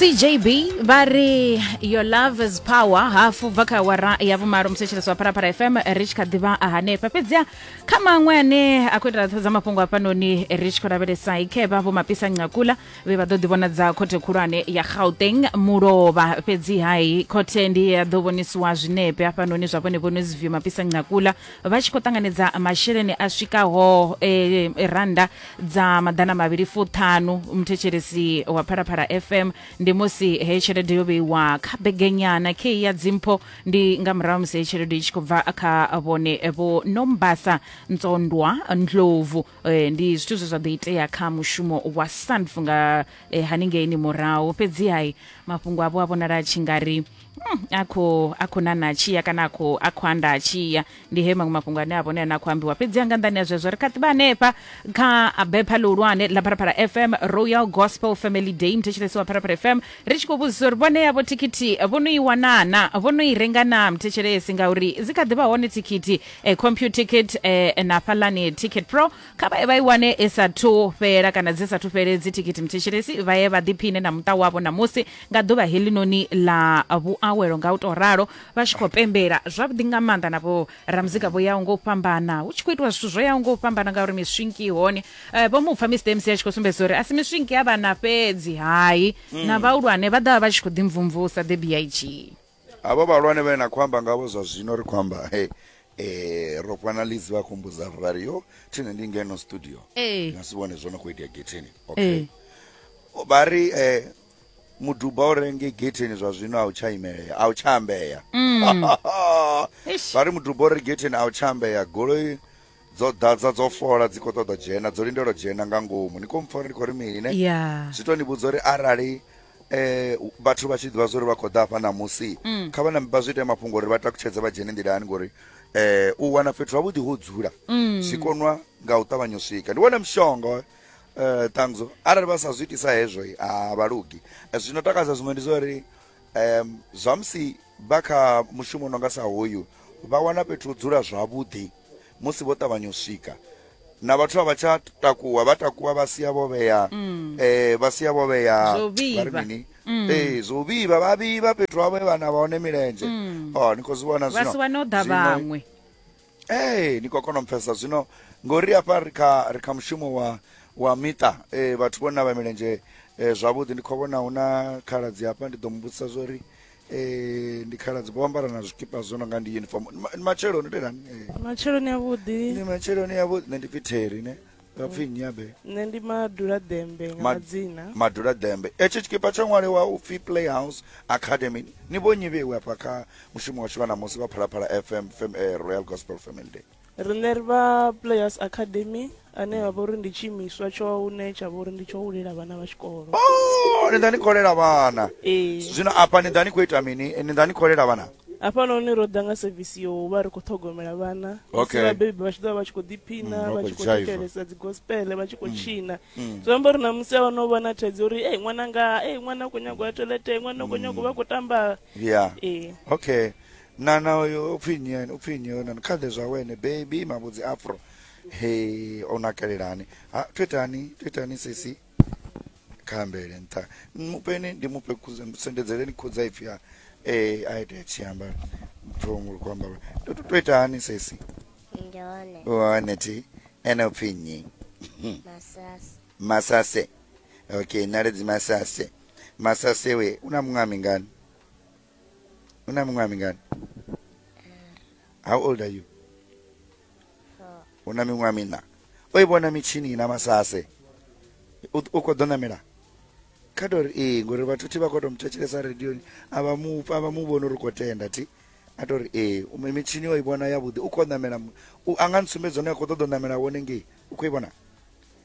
cjb vha ri your love is power hafu bva kha awara ya vhumalo muthetshelesi wa pharapara fm ri tshi kha ḓivha hanefha fhedziha kha maṅwe ane a khou itela ṱhoḓa mafhungo hafhanoni ri tshi khou lavhelesa ikhevha vho mapisa ncakula vhe vha ḓo ḓivhonadza khothe khulwane ya gauteng mulovha fhedziha i khothe ndi ya ḓo vhonisiwa zwinepe hafhanoni zwa vhone vhone zivio mapisa ncakula vha tshi khou ṱanganedza masheleni a swikaho eh, randa dza maḓana mavhili fuṱhanu muthetshelesi wa phalaphala fm ndi musi heyi tshelede yo vheiwa kha begenyana kei ya dzimpho ndi nga murahu musi heyi tshelede i tshi khou bva kha vhone vho nombasa ntsondwa ndlovu eh, ndi zwithu zwe zwa ḓo itea kha mushumo wa sanf nga eh, haningei ni murahu fhedzi hai mafhungo avho a vhonala a tshi nga ri Mm, a khou a khou nana tshiya kana a khou a khou anda tshiya ndi he maṅwe mafhungo ane a vhone ane a khou ambiwa fhedzi anga nḓani ya zwezwo ri kha ḓivha hanefha kha bepha ḽihulwane ḽa pharaphala fm royal gospel family day muthetshelesi wa pharaphala fm ri tshi khou vhudzisa uri vhone yavho thikhithi vho no i wanana vho no i renga na muthetshelesi ngauri dzi kha ḓivha hone thikhithi eh, compute ticket eh, na fhalani ticket pro kha vhaye vha i wane i sathu fhela kana dzi sathu fhele dzi thikhithi mthetshelesi vha ye vha ḓiphine na muṱa wavho ṋamusi nga ḓuvha helinoni ḽa vhuawelo nga u tou ralo vha tshi khou pembela zwavhuḓi nga maanḓa na vho ramuzika vho yaho nga u fhambana hu tshi khou itiwa zwithu zwo yaho nga u fhambana ngauri miswinki i hone Eh, vho mupfa mr mc a tshi khou sumbedza uri a si miswinki ya vhana fhedzi hai na vhahulwane vha ḓovha vha tshi khou ḓimvumvusa the big Havho vhahulwane vhane na khou amba ngavho zwa zwino ri khou amba he eh ro fana lizi vha khou mbudza ri vhari yo thine ndi ngeno studio Ee. nga si vhone zwo no khou itea getheni Ee. okay vha ri eh muduba u renge getheni zwa zwino a u tsha imelea a u tsha ambea Eish. vha ri muduba u re getheni a u tsha ambea goloi Dzo ḓadza dzo fola dzi kho ṱoḓa dzhena dzo lindela dzhena nga ngomu ni kho mpfa uri ni khou ri mini ne yeah. zwi to ni vhudza uri arali eh vhathu vha tshi ḓivha zwa uri vha khou ḓa hafha ṋamusi mm. kha vha nambe vha zwi ite mafhungo uri vha takutshedze vha dzhene nḓilani ngori eh u wana fhethu havhuḓi ho dzula mm. zwi konwa nga u ṱavhanya u swika ndi wone mushonga eh, eh ṱangzo arali vha sa zwi itisa hezwo a vha lugi eh, zwino takadza zwiṅwe ndi zwa uri um zwamusi vha kha mushumo no nga sa hoyu vha wana fhethu u dzula zwavhuḓi musi vho ṱavhanya u swika na vhathu a vha tsha takuwa vha takuwa vha sia vho vhea um vha sia vho vhea Zwo vhivha. vha ri mini Mm. ee zwo vhivha vha vhivha fhethu havho he vha na vha hone milenzhe Mm. o ni khou zwi vhona vha si wane o ḓa Zwino- vhaṅwe ee ni khou kona u mpfesa zwino ngori hafha ri kha ri kha mushumo wa wa miṱa eh, vhathu vho navha milenzhe eh, zwavhuḓi ndi khou vhona hu na khaladzi hafha ndi ḓo mu vhudzisa zwo ri Eh, ndi khaladzi vho ambara na zwikipa zwo no nga ndi uniform Ndi ma- ndi matshelo ni telani matsheloni avhuḓi ndi matshelo ni yavho nṋe ndi pfi theri ne vha pfi nnyi abe nṋe ndi madula ḓembe nga Ma- madzina madula dembe etsho tshikipa tsho ṅwaliwa u pfi playhouse academy ni vho nyi vheiwe afha kha mushumo washu vha ṋamusi vha phalaphala fm fam, eh, royal gospel family day riṋe ri vha players academy ane vha vhori ndi tshiimiswa tsho une tsha vhori ndi tsho hulela vhana vha tshikolo oh, ni ḓa ni kholela vhana ee zwino afha ni ḓa ni khou ita mini ni ḓa ni kholela vhana hafhanoni ro ḓa nga sevisi yo vha ri khou ṱhogomela vhana okay. vhabebi vha tshi ḓo vha vha tshi khou ḓiphina mm, vha tshi khou thetshelesa dzi gospel vha tshi khou mm. tshina mm. zwi amba uri na musi avha no vha na thaidzo uri ei ṅwana nga ei ṅwana u khou nyagwa ya toilete ṅwana u khou nyagwa vha khou tamba yeah. ee okay Nana oyo u pfi nnyi ene u pfi nnyi oyo nana kha ḓe zwawe ene baby mavhudzi afro he o nakelelani ha to itani to itani sisi kha ambele nṱha mupeni ndi mufhe sendedzeleni khudza ipfi a eh a ite tshi amba mphungu lu kwamba to to itani sisi ndi hone one thi ene u pfi nnyi masasi masase okay naledzi masase masase we una muṅwe a mingani Una miṅwaha mingani? How old are you? Una miṅwaha mina. O i vhona mitshini na masase. U kho ḓo namela. Kha tori ee ngori vhathu thi vha kho to muthetshelesa radio a vha mu pfa vha mu vhona uri kho tenda thi. A tori ee u mitshini o i vhona ya vhuḓi u kho namela u anga ntsumbedza hone a kho ṱoḓa u namela wone ngei. U kho i vhona?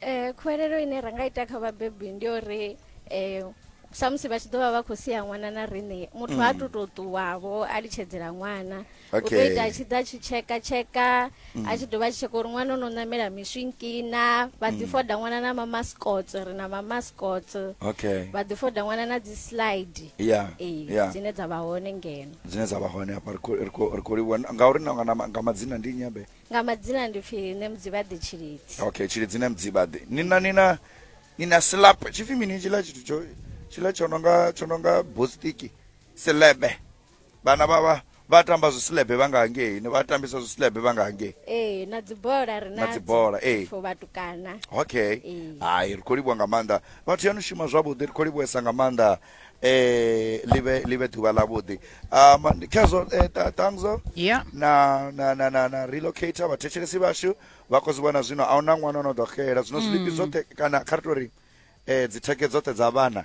eh, khuwelelo ine ra nga ita kha vhabebi ndi uri eh, samusi vha tshi ḓo vha vha khou sia ṅwana na riṋe muthu ha tu tou ṱuwavho a litshedzela ṅwana u ḓo Okay. ita a tshi ḓa a tshi tsheka tsheka a tshi dovha a tshi tsheka uri ṅwana o no ṋamela miswinkina vha ḓi foda ṅwana na mamascots ri na mamascots okay vha ḓi foda ṅwana na dzi slide ya ee ya dzine dza vha hone ngeno dzine dza vha hone hafha ri khou- ri khou- ri khou livhuwa ngauri na- na- nga madzina ndi nnyi abe Nga madzina ndi pfi Nemudzibaḓi Tshilidzi. Okay, Tshilidzi Nemudzibaḓi. Ni na ni na ni na slap. Tshipfi mini tshila tshithu tsho tshila tsho nonga tsho nonga bostiki. Selebe. Vhana vha vha vha tamba zwi slebe vha nga hangei. Ni vha tambisa zwi slebe vha nga hangei. Ee, na dzibola ri Na nadzo. dzibola, ee. For vhatukana. okay Ee. hai ri khou livhuwa nga maanḓa vhathu ya ni shuma zwavhuḓi ri khou livhuwesa nga maanḓa eh live live ḓuvha ḽa vhuḓi um ndi khezwo eh, ta- tangzo Yeah. na na na na na relocator vhathetshelesi vhashu vha khou zwi vhona zwino a huna ṅwana ono ḓo xela zwino zwiḽipi zwoṱhe kana kha ri tou ri eh dzitheke dzoṱhe dza vhana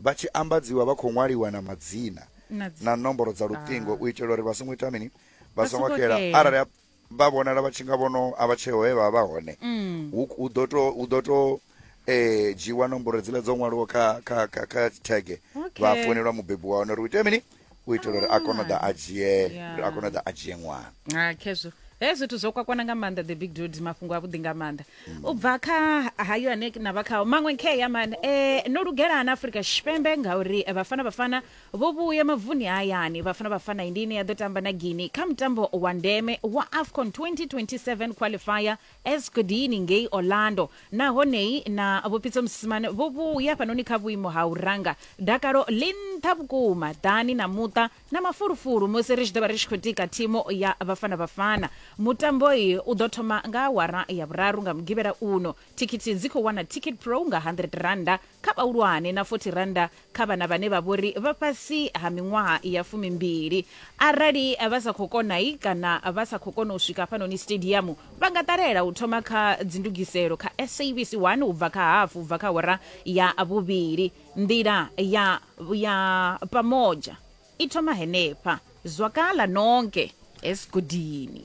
vha tshi ambadziwa vha khou ṅwaliwa na madzina Na dzi- na nomboro dza luṱingo u itela uri vha songo ita mini vha Vha songo songo xela xela. arali ha- vha vhonala vha tshi nga vhono a vha tsheho he vha vha hone mm. hu ḓo to hu ḓo to eh dzhiwa nomboro dzile dzo ṅwaliwa kha kha kha kha thege vha founelwa mubebi wa hone uri u ite mini u itela uri a kone u ḓa a dzhie a kone u ḓa a dzhie ṅwana ha khezwo he zwithu zwo kwakwana nga maanḓa the big dude mafhungo a vhuḓi nga maanḓa u bva kha hayo ane na vha khao maṅwe nkhe ya mani um no lugelana afrika tshipembe ngauri vhafana vhafana Vho vhuya mavuni a hayani. Bafana Bafana ndi ine ya ḓo tamba na Guinea kha mutambo wa ndeme wa AFCON 2027 Qualifier Escudini ngei Orlando. Nahone na Vho Pitso Mosimane vho vhuya hafhanoni kha vhuimo ha u ranga. Dakalo ḽi nṱha vhukuma ḓani na muṱa na mafulufulu musi ri tshi ḓo vha ri tshi khou tika thimu ya Bafana Bafana. Mutambo u ḓo thoma nga awara ya vhuraru nga Mugivhela uno. Thikhithi dzi khou wana Ticketpro nga R100 kha vhahulwane na R40 kha vhana vhane vha vhori vha fhasi ha miṅwaha ya fumimbili. Arali vha sa khou konai kana vha sa khou kona u swika hafhanoni sitediamu, vha nga ṱalela u thoma kha dzindugiselo kha SABC 1 u bva kha hafu u bva kha awara ya vhuvhili. Nḓila ya ya Pamoja i thoma henefha. Zwakala Nonke Esigodini.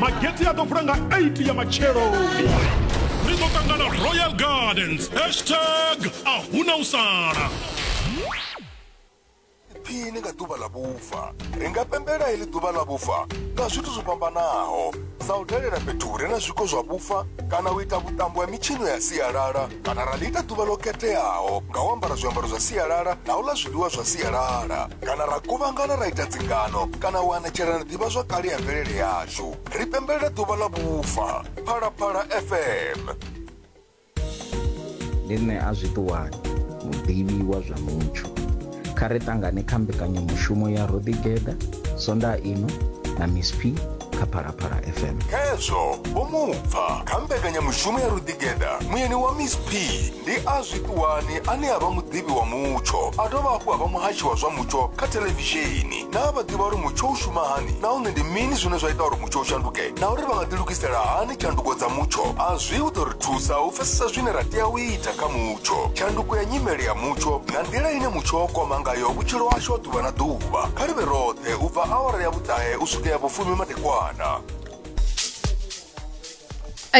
magete a ḓo vula nga 8 ya matsheloni ri ḓo ṱangana royal gardens hashtag a huna u sala phini nga ḓuvha ḽa vhufa ri nga pembela heḽi ḓuvha ḽa vhufa nga zwithu zwo fhambanaho sa u dalela fhethu hu re na zwiko zwa vhufa kana u ita vhuṱambo ha mitshino ya sialala kana ra ḽi ita ḓuvha ḽo khetheaho nga u ambara zwiambaro zwa sialala na u ḽa zwiḽiwa zwa sialala kana ra kuvhangana ra ita dzingano kana u anetshelana ḓivha zwa kale ya mvelele yashu ri pembelela ḓuvha ḽa vhufa phalaphala fm ndi nṋe a zwiṱuwani muḓivhi wa zwa mutsho kha ri tangane kha mbekanyamushumo ya ro ḓigeḓa sonda ino na miss p kha phalaphala fm hezwo vho mu pfa kha mbekanyamushumo ya ruḓigeda muyeni wa miss p ndi a zwiṱuwani ane a vha muḓivhi wa mutsho a dovha hafhu a vha muhashi wa zwa mutsho kha thelevishini naa vha ḓivha uri mutsho u shuma hani nahone ndi mini zwine zwa ita uri mutsho u shanduke na uri vha nga ḓilugisela hani tshanduko dza mutsho a zwi u ḓo ri thusa u pfesesa zwine ra tea u ita kha mutsho mutsho tshanduko ya nyimele ya mutsho nga nḓila ine mutsho wa kwama ngayo vhutshilo hashu ha ḓuvha na ḓuvha kha livhe roṱhe u bva awara ya vhuṱahe u swika ya vhufumi madekwana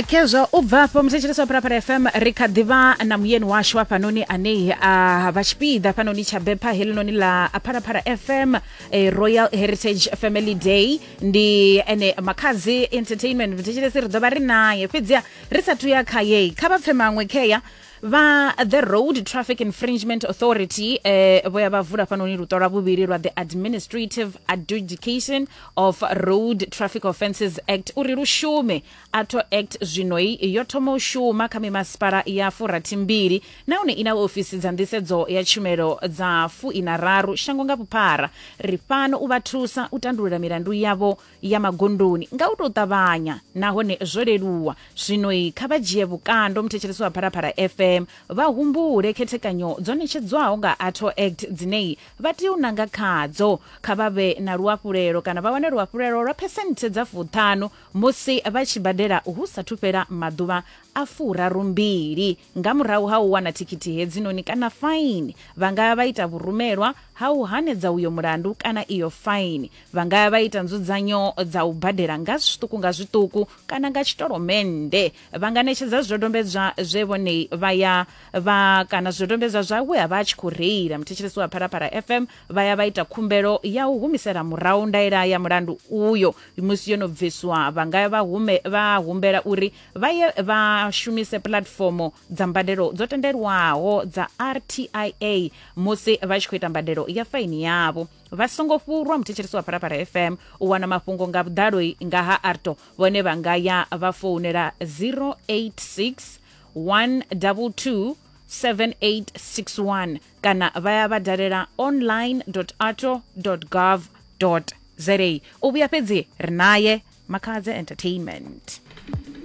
khezwo u bva afho muthetshelesi wa phalaphala fm ri kha ḓivha na muyeni washu hafhanoni anei a vha tshipiḓa hafhanoni tsha bepha helinoni ḽa phalaphala fm eh, royal heritage family day ndi ene makhadzi entertainment muthetshelesi ri ḓo vha ri naye fhedziha ri sa thuya kha yei kha vha pfe maṅwe khea vha the road traffic infringement authority eh, vho ya vha vula fhanoni luṱo lwa vhuvhili lwa the administrative adjudication of road traffic offences act uri lu shume atho act zwinoi yo thoma u shuma kha mimasipala ya furathi mbili nahone i na ofisi dza nḓisedzo ya tshumelo dza fuina raru shango nga vhuphara ri fhano u vha thusa u tandulula milandu yavho ya magondoni nga u tou ṱavhanya nahone zwo leluwa zwinoi kha vha dzhie vhukando muthetshelesi wa phalaphala fm vha humbule khethekanyo dzo ṋetshedzwaho nga atho act dzinei vha tea u nanga khadzo kha vha vhe na luafhulelo kana vha wane luafhulelo lwa phesenthe dza fuṱhanu musi vha tshi badela hu sathu fhela maḓuvha a furarumbili Nga murahu ha u wana thikhithi hedzinoni kana faini, vha nga ya vha ita vhurumelwa ha u hanedza uyo mulandu kana iyo faini. Vha nga ya vha ita nzudzanyo dza u badela nga zwiṱuku nga zwiṱuku kana nga tshitolomennde. Vha nga ṋetshedza zwidodombedzwa zwe vhone vha ya vha kana zwidodombedzwa zwa we a vha a tshi khou reila. Muthetshelesi wa Phalaphala FM vha ya vha ita khumbelo ya u humisela murahu ndaela ya mulandu uyo musi yo no bviswa. Vha nga ya vha hume vha humbela uri vha ye vha shumise puḽatifomo dza mbadelo dzo tendelwaho dza rtia musi vha tshi khou ita mbadelo ya faini yavho vha songo fhurwa muthetshelesi wa phalaphala fm u wana mafhungo nga vhuḓalo nga ha arto vhone vha nga ya vha founela 086 122 7861 kana vha ya vha dalela online arto gov za u vhuya fhedzi ri naye makhadze entertainment